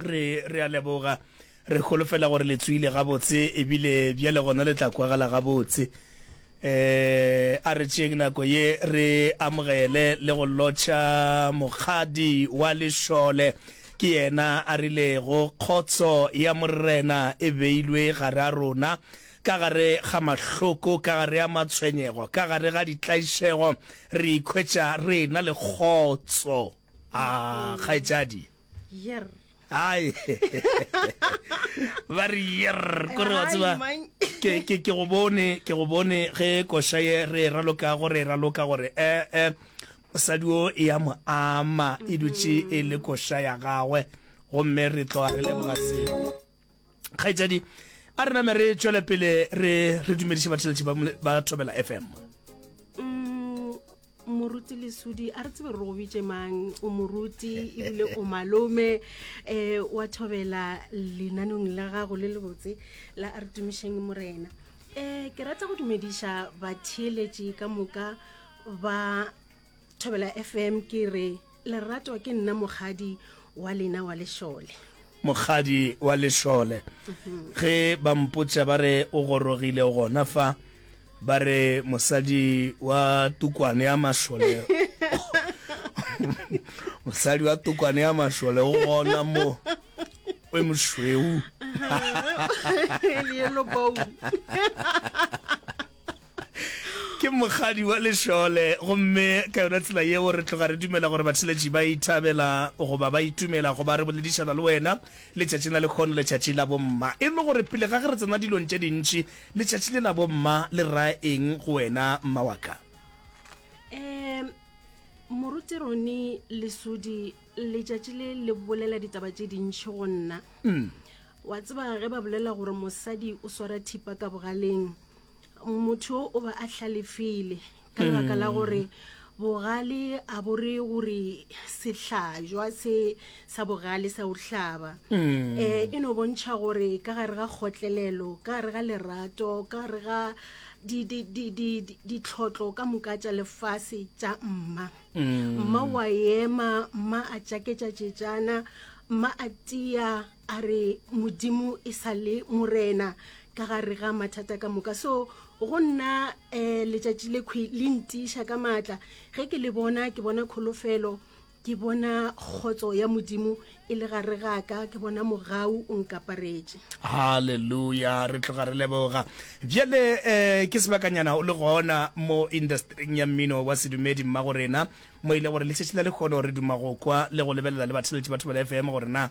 re re a leboga re holofela gore le tswile gabotse ebile bjale gona le tla kwagala gabotse eh a re tšeng nako ye re amogele le go lotšha mokgadi wa lešole ke yena a rilego kgotso ya morena e beilwe gare a rona ka gare ga mahloko ka gare a matshwenyego ka gare ga ditlaišego re ikhwetša re na le kgotso a ah, kgaetšadi Yer. Ai. Ba re yer kore wa tseba ke ke ke go bone ke go bone ge kosha ye re e raloka gore e raloka gore eh eh mosadi o e ya mo ama e dutše e le kosha ya gagwe gomme re tloga re leboga seo. kgaetšadi a re name re tšwele pele re re dumediše batheletši ba thobela fm mm, moruti lesudi a re tsebe re go bitše mang o moruti ebile o malome um wa thobela lenanong la gago le lebotse la a re tumišeng morena um ke rata go dumediša batheeletši ka moka ba thobela fm ke re lerato ke nna mokgadi wa lena wa lešole mokgadi wa lešole ge ba mpotša ba re o gorogile gona fa ba re mosadi wa tukwane ya mašole mosadi wa tukwane ya mašole o gona mo o mošweu ke mokgadi wa lešole gomme ka yona tsela yeo re tloga re dumela gore batheletši ba ithabela goba ba itumela go ba re boledišana le wena letšatšing la lekgono letšatši la bomma e le gore pele ga ge re tsena dilong tše dintši letšatši le la bomma le ra eng go wena mma wa ka um moruti rone lesodi letšatši le le bolela ditaba tše dintšhi go nna mm. wa tseba ge ba bolela gore mosadi o swara thipa ka bogaleng motho o ba a hlalefile ka lebaka la gore bogale a bore gore sehlajwa se sa bogale sa o hlaba um e no bontšha gore ka gare ga kgotlelelo ka gare ga lerato ka gare ga di- di- di- di- di- ditlhotlo ka moka tša lefase tša mma mma wa ema mma a tšaketša tšetšana mma a tia a re modimo e sa le morena ka gare ga mathata ka moka so go nna um letšatši le kgwi le ntiiša ka maatla ge ke le bona ke bona kholofelo ke bona kgotso ya modimo e le gare ga ka ke bona mogau o nkaparetše halleluja re tloga re leboga bjale um ke sebakanyana o le gona mo industring ya mmino wa sedumedi mma go rena mo e le gore letšatši la lekgono re duma go kwa le go lebelela le batheletše batho ba le fm gore na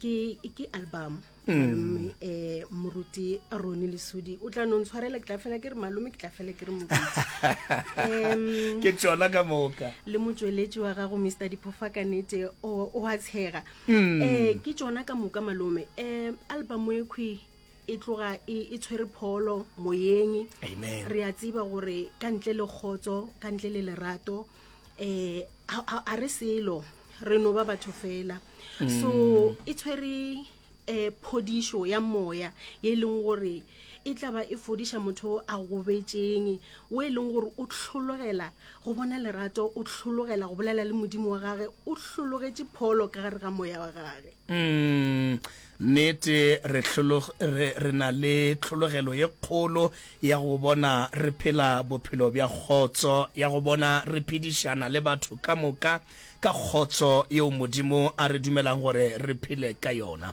ke ke album mm. malome eh moruti roni le sudi o tla nong tshwarela ke tla fela ke re malome ke tla fela ke re moruti ke tsona ka moka le motsweletsi wa gago mr diphofa ka nete o a tshega mm. eh ke tsona ka moka malome eh album e khwi e tloga e, e tshwere pholo moyeng re a tsiba gore ka ntle le kgotso ka ntle le lerato eh a- a a re selo re no ba batho fela so e tshwere um phodišo ya moya ye e leng gore e tlaba e fodiša motho o a gobetšeng o e leng gore o tlhologela go bona lerato o tlhologela go bolela le modimo wa gage o hlologetše pholo ka gare ga moya wa gage Mm, Nnete, re, re, re na le tlhologelo ye kgolo ya go bona re phela bophelo bja kgotso, ya go bona re phedišana le batho ka moka ka kgotso yeo Modimo a re dumelago gore re phele ka yona.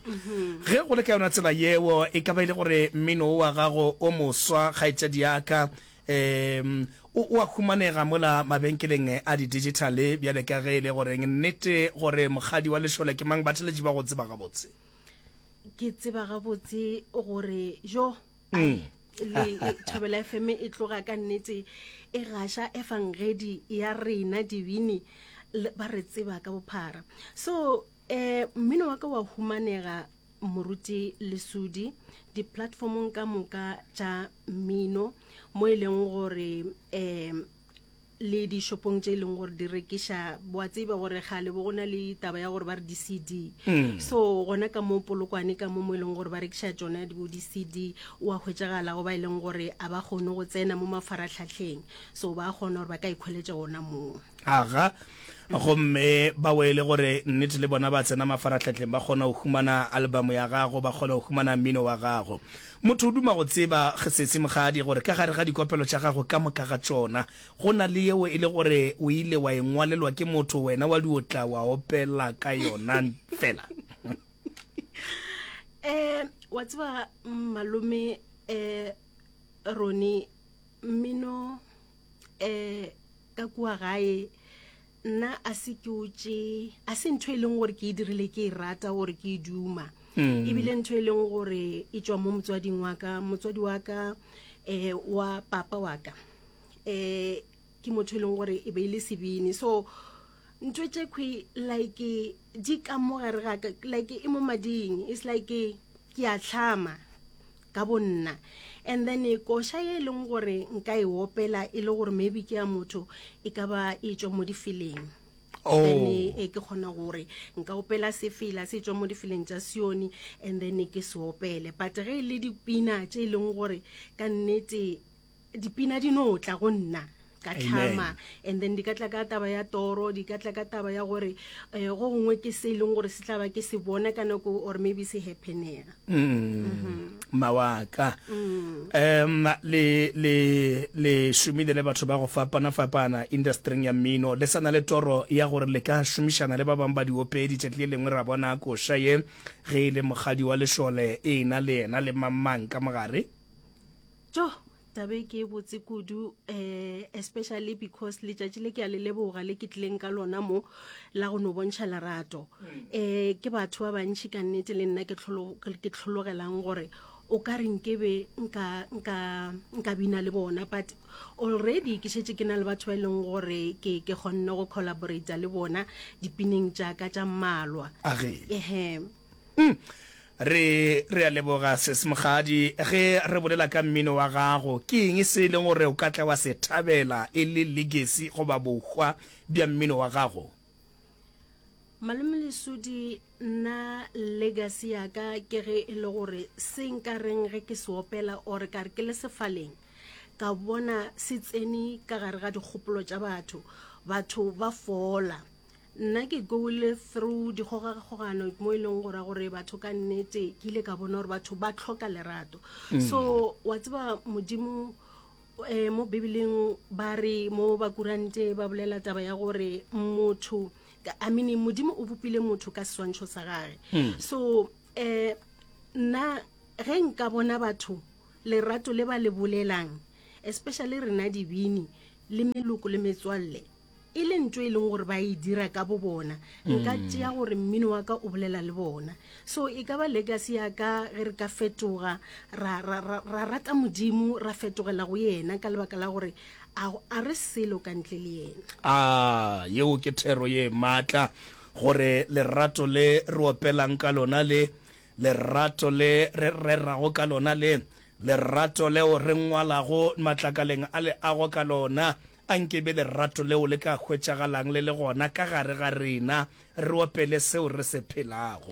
Ge go le ka yona tsela yeo, e ka ba e le gore mmino wo wa gago o moswa, kgaetšediaka, Ee, o, o a humanega mola mabenkeleng a didigitale bjale. Ka ge e le goreng nnete gore Mokgadi wa Lešole ke mang, batheletši ba go tseba gabotse. Ke tseba gabotse gore jo, ai, le e, Thobela FM e tloga ka nnete e gaša efangedi ya rena dibini le, ba re tseba ka bophara. So, eh, mmino wa ka wa humanega moruti lesudi di-platformong ka moka tša mmino mo e leng gore um le dishopong tše e leng gore di rekiša boa tseba gore ga le bo go na le taba ya gore ba re di-cd mm. so gona ka mo polokwane ka mo mo e leng gore ba rekiša tsone bo di-cd o a hwetsegala go ba e leng gore a ba kgone go tsena mo mafaratlhatlheng so ba kgona gore ba ka ikgweletša gona moo Aga, gomme ba wele gore nnete le bona ba tsena mafaratlhatlheng ba kgona go humana albamo ya gago, ba kgona go humana mmino wa gago. Motho o duma go tseba, Sesi Mokgadi, gore ka gare ga dikopelo tša gago ka moka ga tšona, go na le yeo e le gore o ile wa e ngwalelwa ke motho wena wa di o tla wa opela ka yona fela. Um, wa tseba malome, um, Ronnie, mmino, um, ka kua gae nna a se ke o tše a se ntho e leng gore ke e dirile ke e rata gore ke e duma mm. ebile ntho e leng gore e tswa mo motswading wa ka motswadi wa ka um wa papa wa ka um ke motho e leng gore e be e le sebini so ntho tše kgwe like di ka mo gare gaka like e mo mading it's like ke a tlhama ka bo nna and then koša ye e leng gore nka e opela e le gore maybe ke ya motho e ka ba e tswa mo difeleng Oh. then e ke kgona gore nka opela sefela se tswa mo difeleng tsa sione and then ke se opele but ge e le dipina tse e leng gore ka nnete dipina di no tla go nna ka tlhama and then di ka tla ka taba ya toro di ka tla ka taba ya gore eh, go gongwe ke se e leng gore se tla ba ke se bona ka nako or maybe se happenega mm-hmm. mawaka um le le le šomile le batho ba go fapana fapana industryng ya mmino le sana le toro ya gore le ka šomišana le ba bangwe ba diopedi tšatši le lengwe ra bona koša ye ge e le mogadi wa lešole e na le ena le mamang ka mogare tjo taba e ke e botse kudu um especially because letšatši le ke a le leboga le ke tlileng ka lona mo la go no bontšha lerato um ke batho ba bantšhi ka nnete le nna ke tlhologelang gore o ka re nkebe nka bina le bona but already ke šetse ke na le batho ba e leng gore ke kgonne go collaborata le bona dipineng tšaka tša mmalwa ehe Uhm re re a leboga Sis Mokgadi ge re bolela ka mmino wa gago ke eng se e leng gore o ka tla wa se thabela e le legacy goba bohwa bja mmino wa gago? Malome Lesudi nna legacy ya ka ke ge e le gore se nka reng ge ke se opela or ka re ke le sefaleng ka bona se tsene ka gare ga dikgopolo tša batho batho ba fola nna ke gole through dikgogakgogano mo e leng gora gore batho ka nnete ke ile ka bona gore batho ba tlhoka lerato mm. so wa tseba modimo eh, mo bibeleng ba re mo bakurante ba bolela taba ya gore motho i mean modimo o bopile motho ka seswantšho sa gage mm. so um nna ge nka bona batho lerato le ba le bolelang especially rena dibini le meloko le metswalle e le ntho e leng gore ba e dira ka bo bona nka mm. tšea gore mmino wa ka o bolela le bona so e ka ba legacy ya ka ge re ka fetoga ra rata modimo ra fetogela go yena ka lebaka la gore a re selo ka ntle le yena a yeo ke thero ye maatla gore lerato le re opelang ka lona le lerato le re rerago ka lona le lerato leo re ngwalago matlakaleng a leago ka lona A nke e be lerato leo le ka hwetšagalang le le gona ka gare ga rena, re opele seo re se phelago.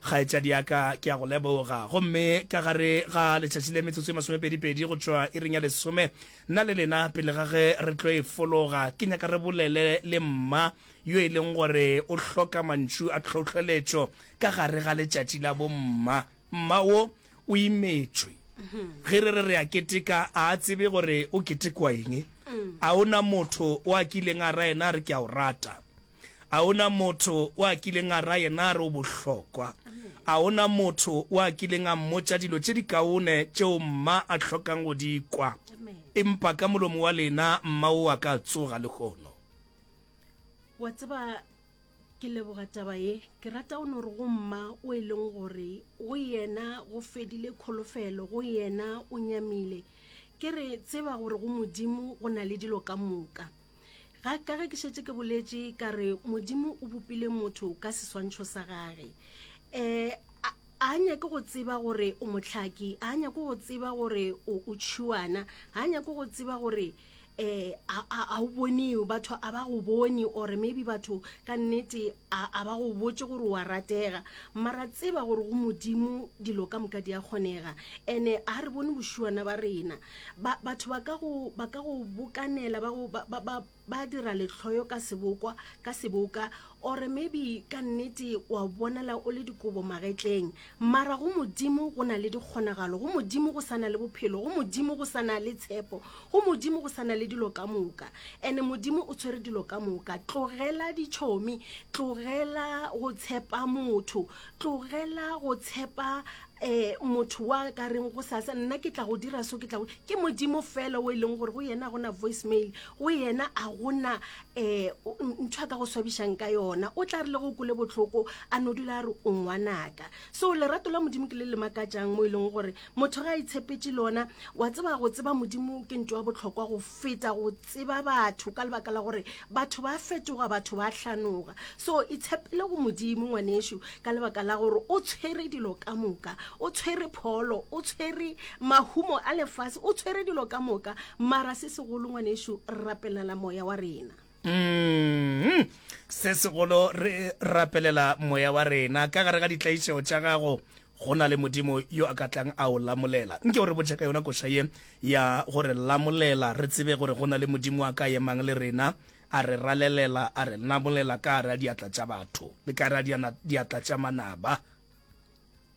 Kgaetšadi ya ka, ke a go leboga. Gomme ka gare ga letšatši le metsotso e masomepedipedi go tšwa iring ya lesome, nna le lena, pele ga ge re tlo e fologa, ke nyaka re bolele le mma yo e leng gore o hloka mantšu a tlhohleletšo ka gare ga letšatši la bomma. mma wo o imetšwe ge re re re a keteka a a tsebe gore o ketekwa eng a o na motho o a kileng a ra yena a re ke a o rata a o na motho o a kileng a ra yena a re o bohlokwa a o na motho o a kileng a mmotša dilo tše di kaone tšeo mma a hlokang go di kwa empa ka molomo wa lena mma o a ka tsoga lehono wa tseba Ke leboga taba ye. Ke rata o no re go mma o e leng gore go yena go fedile kholofelo, go yena o nyamile. Ke re tseba gore go Modimo go na le dilo ka moka. Ga ka ge ke šetse ke boletše ka re Modimo o bopile motho ka seswantšho sa gage. Eh a nyake go tseba gore o motlhaki a nyake go tseba gore o o tšhuana a nyake go tseba gore eh a o bone batho a ba go bone or maybe batho ka nnete a ba go botse gore wa ratega mara tseba gore go modimo dilo ka moka di a kgonega ene a re bone bošiwana ba rena batho ba ka go ba ka go bokanela ba go ba ba ba dira letlhoyo ka sebokwa ka seboka or maybe ka nnete wa bonala o le dikobo magetleng mara go modimo go na le dikgonagalo go modimo go sana le bophelo go modimo go sana le tshepo go modimo go sana le dilo ka moka and modimo o tshwere dilo ka moka tlogela ditšhomi tlogela go tshepa motho tlogela go tshepa eh motho wa ka reng go sasa nna ke tla go dira so ke tla ke modimo fela o e leng gore go yena a gona voice mail go yena a gona ee ntho a ka go swabišang ka yona o tla re le go kole botlhoko a no dula a re o ngwanaka so lerato la modimo ke le le makatsang mo e leng gore motho ga a itshepetse lona wa tseba go tseba modimo ke nto ya botlhokwa go feta go tseba batho ka lebaka la gore batho ba fetoga batho ba tlhanoga so itshepele go modimo ngwaneso ka lebaka la gore o tshwere dilo ka moka o tshwere pholo o tshwere mahumo a lefase o tshwere dilo ka moka mara se segolo ngwanešu rapelela moya wa rena mm-hmm. se segolo re rapelela moya wa rena ka gare ga ditlaišego tša gago go na le modimo yo a ka tlang a o lamolela nke o re botšha ka yona koša ye ya gore lamolela re tsebe gore go na le modimo a ka emang le rena A re ralelela, a re nabolela ka gare ga diatla tša batho le ka gare ga diatla tša manaba.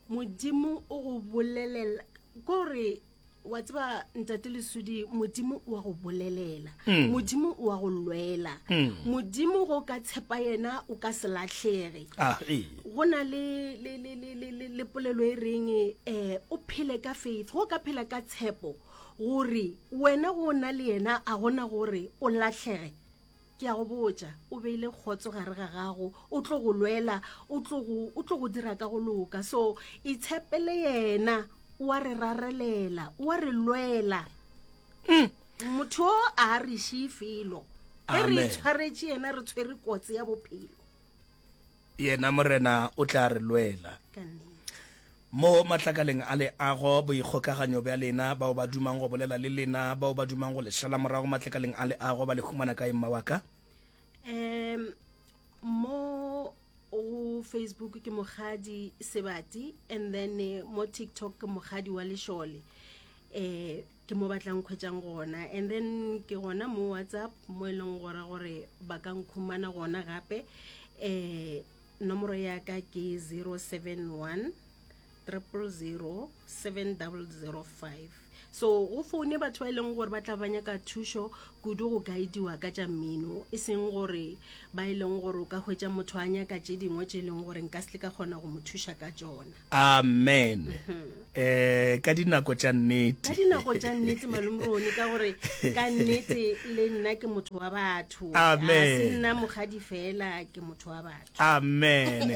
Modimo o go bolelela, ko re wa tseba ntate lesudi modimo wa go bolelela mm. modimo wa go lwela mm. modimo go ka tshepa yena o ka se latlhege ah, go na le le le le le le polelo e reng eh o phele ka faith go ka phela ka tshepo Gore wena go na le yena a gona gore o lahlege. Ke a go botša, o beile kgotso gare ga gago, o tlo go lwela, o tlo go, o tlo go dira ka go loka. So, itshepele yena, o a re rarelela, o a re lwela. Motho o a re šee felo. Ge re Amen. itshwaretše yena, re tshwere kotsi ya bophelo. Yena Morena o tla re lwela. Mo matlakaleng a leago, boikgokaganyo bja lena, bao ba dumang go bolela le lena, bao ba dumang go le šala morago matlakaleng a leago, ba le humana kae, mma wa ka? Um, mo go Facebook ke mogadi Sebati and then eh, mo TikTok ke mogadi wa Lešole. Eh, ke mo ba tla nkhwetsang gona and then ke gona mo whatsapp mo e leng gore gore ba ka nkhumana gona gape um nomoro ya ka ke 071 triple zero seven double zero five so go foune batho ba e leng gore ba tla ba nyaka thušo kudu go guidiwa ka tša mmino e seng gore ba e leng gore o ka hwetša motho a nyaka tše dingwe tše e leng gore nka se ka kgona go mo thuša ka tšona Amen. Eh ka dinako tša nnete. Ka dinako tša nnete malumrone ka gore ka nnete le nna ke motho wa batho. Amen. A se nna mogadi fela ke motho wa batho. Amen.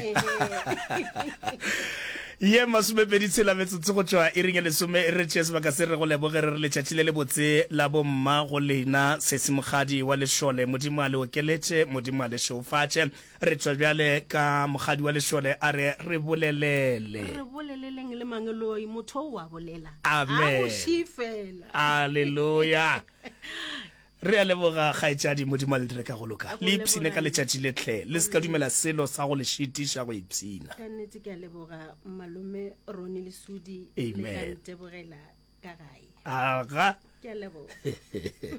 ye masomepedi tshela metsotso go tšwa e reng lesome e re tšee sebaka se re go leboge re re letšatši le le botse la bomma go lena sesemogadi wa lešole modimo a le okeletše modimo a le šeofatše Re tšwa bjale ka mokgadi wa lešole a re re bolelele. Re boleleleng le mangeloi, motho o a bolela. Amen. A boši fela. Aleluya. Re a leboga kgaetšadi Modimo a le dire ka go loka. Le ipshine ka letšatši le tle. Le se ka dumela selo sa go le šitiša go ipshina. Ka nnete ke a leboga malome Roni Lesudi le ka Amen. ntebogela ka gae. Aga. Ke a leboga.